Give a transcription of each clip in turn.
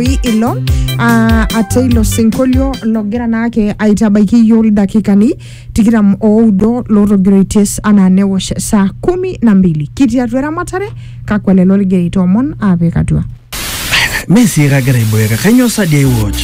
Wi ilo ah, ate ilo sinkolio logira naake aitabaiki iyiok ildakikani tikitam oudo lootogiroitie anaa newosh saa kumi na mbili kitii atua eramatare kakwa lelo ligira aitoomon aapik atua Mee sii kagira aiboeka, kainyoo sa dii aiwatch?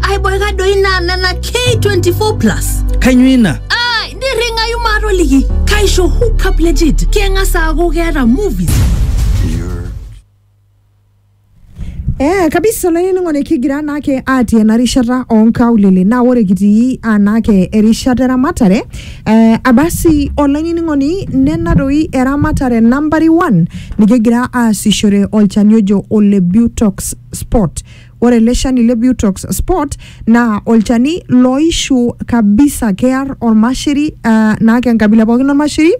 aiboika doi naa nena k24 plus Kainyoo ina? ai nirring'ayu maatoliki kaisho hookup legit keng'as aaku keeta movies Eh, kabisa olainining'oni kigira naake atii ena rishata onkaulele naa ore kitii anaake erishata eramatare eh, abasi olainining'oni nena doi eramatare nambari one nikigira aasishore olchani ojo ole butox spot Ore ele shani le Butox Sport naa olchani loishu kabisa kear olmasheri uh, naa kenkabila pookin olmasheri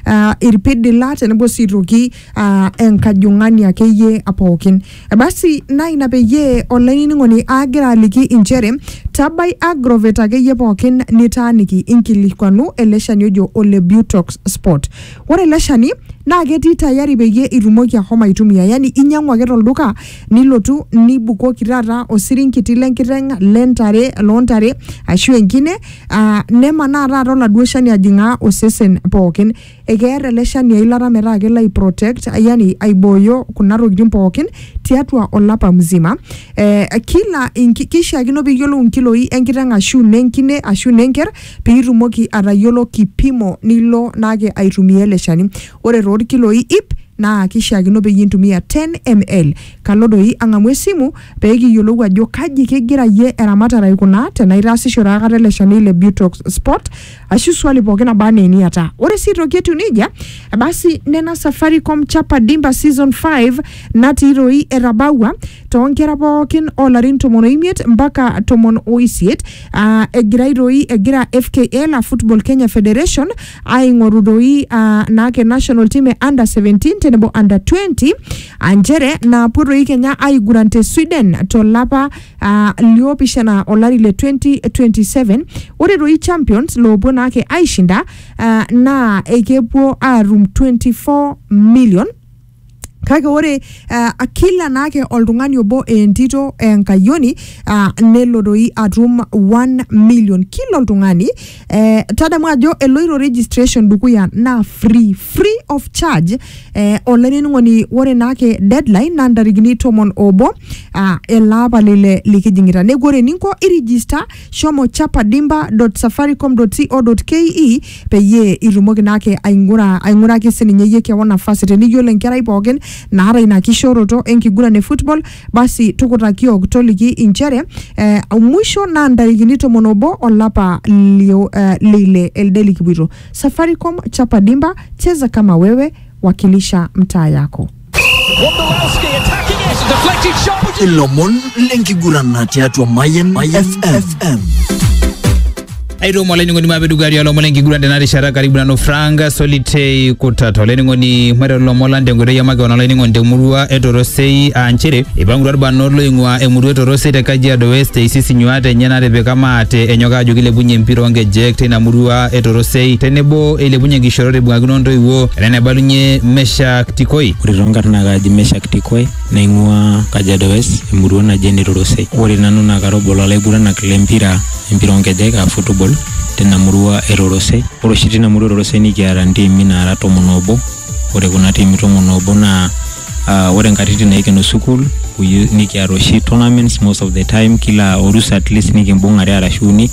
uh, irpidila tenebo sii aitoki uh, enkajung'ani akeyie pookin. Basi naa ina peyie olainining'oni agira aliki inchere tabai agrovet akeyie pookin nitaaniki inkilikuanu ele shani ojo ole Butox Sport. Ore ele shani naa ketii tayari peyie itumoki ahomo aitumia, yani inyang'u ake tolduka nilotu nibukoki taata osirinkiti lenkiteng lentare loontare ashu enkine aa nemanaa taata oladuo shani ajing'aa osesen pookin ekeer ele shani eilata metaa kelo ai protect yani aibooyo kuna tokitin pookin tiatua olapa mzima eh, kila inki- kishiakino piyiolou inkiloi enkiteng ashu nenkine ashu nenker piitumoki atayiolo kipimo nilo naake aitumia ele shani Ore too lkiloi iip naa keishiakino peyie intumia 10 ml. Kalo doi ang'amu esimu pee kiyiolou ajo kaji kegira iyie eramatare aikunaa tenaa itaasishore akata ele shani le Butox Spot ashu swali pooki naba anaa eniata. Ore sii aitoki etiu neijia, basi nena Safaricom Chapa Dimba Season Five natii doi etabaua too nkera pooki oo larin tomon o imiet mpaka tomon o isiet aa egirai doi egira FKL aa Football Kenya Federation aing'oru doi ah, naake national team e under 17 tenebo under 20 ah, nchere naapuo doi kenya aiguran te sweden tolapa ah, liopishana olari le 2027 ore doi champions loopuo naake aishinda ah, naa ekepuo aatum 24 million Kake ore uh, kila naake oltung'ani obo entito enkayioni uh, nelo doi atum 1 million kila oltung'ani eh, tadamu ajo eloito registration dukuya naa free free of charge eh, olainining'oni ore naake deadline naa ntarikini tomon obo uh, ele apa lile likijing'ita neku ore eninko irijista shomo chapa dimba.safaricom.co.ke peyie itumoki naake aing'ura aing'uraki sininye iyie kewon nafasi teniyiolo enkerai pookin naata ina kishooroto enkiguran e football basi tukutaki yook toliki inchere eh, mwisho naa ntarikini tomon obo olapa lio, eh, leile elde likipuito safaricom chapa dimba cheza kama wewe wakilisha mtaa yako ilomon lenkigurana tiatua Mayan FM. aitoomo olainining'oni maape dukuya tialo lomon lenkiguran tena rishata karibu nanu frank solitei kutata olainining'oni maiteru lomon lang tenkoitoi e makeon olainining'oni temurua e torosei aa nchere eipangutua irbanot loing'ua emurua e torosei te kajiado west eisisi nyuat enye natipika maate enyok aajo kilepunye empira oonkejek teina murua e torosei tenebo eilepunye nkishorot eibung'akino ntoiwuo ena naibalunye mesha Tikoi. Ore too nkarn naa kaaji Meshak Tikoi naing'uaa Kajiado West emurua naji ene Torosei. Ore nanu naa kara obo loo laiguranak le mpira empira oo nkejek aa football tina murua e Torosei. Ore oshi tina murua e Torosei nikiata ntiimi naara tomon oobo. Ore kuna tiimi tomon oobo naa ore nkatitin naikeno sukuul nikiata oshi tournaments most of the time kila orusa atleast nikimbung'are arashu uni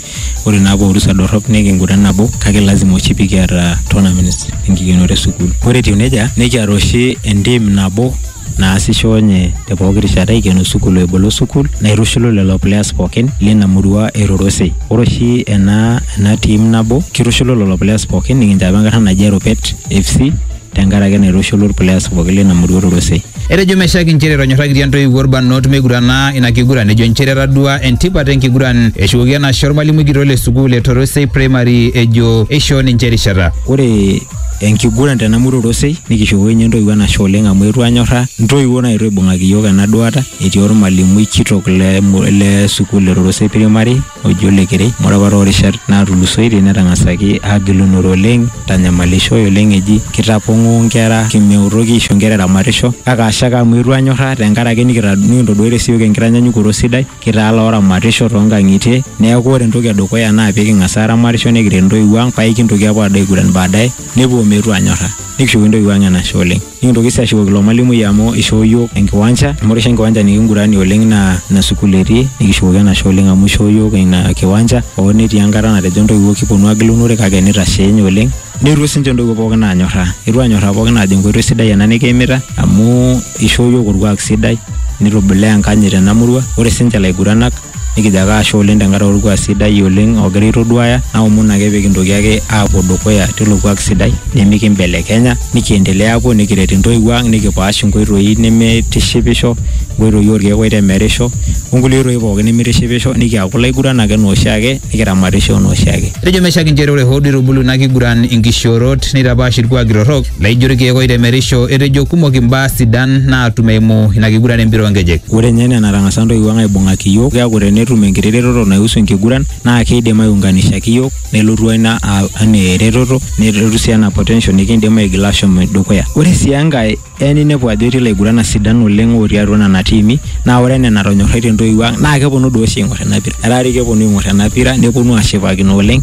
ore naa poorusa dorrop nikinguran nabo kake lazima oshi pikiata tournaments enkikenoto esukuul ore etiu nejia nikiata oshi entim nabo naasisho nye te pooki rishata ikeno sukuul o ebolo sukuul naitushulu lelo players pookin lina murua e Rorosei ore oshi ena, ena team nabo kitushulu lelo players pookin nikincho apa enkarna naji Eropet FC tenkaraki naitushulu ilplayers pooki leina murua olorosei. Etejo Meshack inchere etonyorrakitia intoiwuo ilbarnot meigurana ina kiguran ejo inchere etadua entipat enkiguran eshukoki enashe olmalimui kitok le sukuul e Torosei Primary ejo eishoo ninche erishata. Ore enkiguran tena murua olorosei nikishukoki ninye intoiwuo enashe oleng amu eetuo aanyorraa, intoiwuo naaetuo aaibung'aki iyiook ena duaata etii olmalimui kitok le sukuul e Torosei Primary. oji Ole Kerei amu ore apa too rishat naatulusoitie netang'asaki aagilunore oleng eitanyamalishoe oleng eji kitapong'oo inkera meutoki aisho inkera eramatisho kake ashe ake amu eetuo anyorraa tenkaraki nikita nikintoduaitie sii iyiook enkitanyanyukoto sidai kitaa ilooramatisho too nkang'itie neeku ore entoki e dukuya naa peeking'as aaramatisho nekiret intoiwuo ang paa aikintoki aapuo aado aiguran baadaye nepuo meetu anyorra nikishukoki intoiwuo ang enashe oleng. Nikintoki sii ashukoki ilo malimui amu ishoo iyiook enkiwanja amu ore oshi enkiwanja nikinguranie oleng naa ina sukuul etii nikishukoki enashe oleng amu ishoo iyiook ina kiwanja hoo netii enkata natejo intoiwuo kiponu aagil unore kake nitashee ninye oleng. Neetuo sii ninche intoiwuo pookin aanyorraa. Eetuo aanyorraa pookin aajo enkoitoi sidai ena nikiimita amu ishoo iyiook orkuak sidai nitubulaa enkanyit tena murua. Ore sii ninche ilaiguranak. Nikijo ake ashe oleng tenkaraki orkuak sidai oleng ogira aitoduaya, naomon ake pikintoki ake aapuo dukuya tilo kuak sidai nimikimbelekenya, nikiendelea aapuo nikiret intoiwuo ang, nikipaash inkoitoi nemeitishipisho, inkoitoi orkeek oitemerisho, onkulie oitoi pookin nemeitishipisho, nikiaku ilaiguranak enaa oshiake, nikiramatisho enaa oshiake. Etejo Meshack inchere ore hoo duo eitubulu ina kiguran inkishoorot neitapaash ilkuaaki torrok, Naijo irkeek oitemerisho etejo kumok imbaa sidan naatum eimu ina kiguran empira oonkejek. Ore ninye enaa enatang'asa ntoiwuo ang aibung'aki iyiook, keeku tenetum enkiti retoto naihusu enkiguran naa keidim aiunganishaki iyiook nelotu ina anaa eretoto nelotu sii anaa potential nikiindim aigila aashom dukuya. Ore sii enkae, eya ninepu ajo etii ilaiguranak sidan oleng otii atua nena tiimi naa ore enaa enatonyorraitie intoiwuo ang naa keponu doi oshi aing'or ina pira. Etaa doi keponu aing'or ena pira neponu aashipakino oleng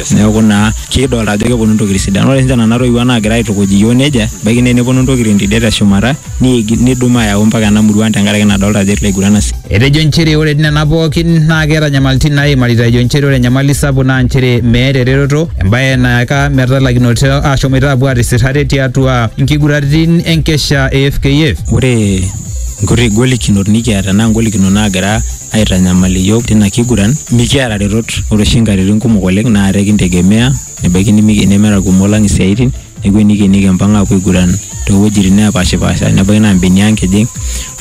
neeku naa kidolta ajo keponu ntokitin sidan ore sinche nana toiwuo naagira aitukuj iyiook nejia ebaiki naa eneponu ntokitin tidie teshumata niigi- nidum ayau mpaka ena murua ang tenkaraki nadolta ajo etii laiguran asi Etejo nchere ore nena pookin naa keeta nyamalitin naaimarita ejo nchere ore enyamali sapuk naa nchere meeta eretoto embae nayaka metalakinoto aashomoita aapuo aatisir ate tiatua nkiguraritin enkesha e FKF. ore nkuti golikinot nikiata naa ngolikinot naagira aitanyamal iyiook tina kiguran mikiata retot ore oshi nkatitin kumok oleng naa ate kintegemea nebaiki nimi- nemeeta irkumok lang isiaitin neeku enikeni kimpang aapuo aiguran toowuejitin neepashipaasha nebaiki naa imbenia ang kijing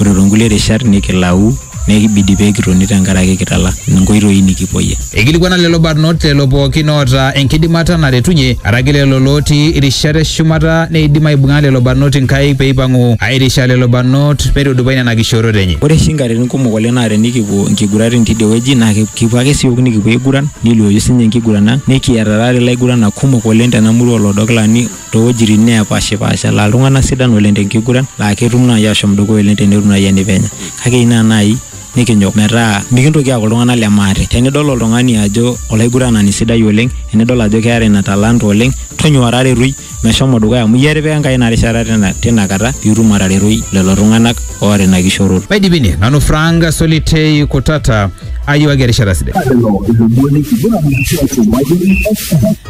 ore toonkulie rishat nikilau nekibidi pee kitoni tenkaraki kitala nkoitoi nikipuoyie. Eikilikuana lelo barnot lelo pookin oota enkidimata naretunye, araki lelo lootii irishat e shumata neidim aibung'a lelo barnot inkaik pee eipang'u aairisha lelo barnot meitudupai nena kishoorot enye. Ore oshi inkatitin kumok oleng naa tenikipuo inkiguratin teidie wueji naa kipuo ake siook nikipuo aiguran neliooyu sii ninye enkiguran ang. Nikiata taadoi ilaiguranak kumok oleng tena murua oo Lodokilani too wuejitin neepaashipaasha laa iltung'anak sidan oleng te nkiguran laa ketum naai aashom dukuya oleng tenetum naai enepenya kake ina naai nikinyok metaa mikintoki aaku iltung'anak le maate. Tenidol oltung'ani ajo olaiguranani sidai oleng, enidol ajo keeta ina talanta oleng, tonyua taretoi meshomo dukuya amu iyie etipika Enkai ina rishata tina kata pee itum ataretoi lelo tung'anak oota ina kishoroto. Maidipi ine, nanu Frank Solitei Kutata, ayiewaki erishata sidai. Tadolo ilomoni likiguran enkishui te Wajir FM.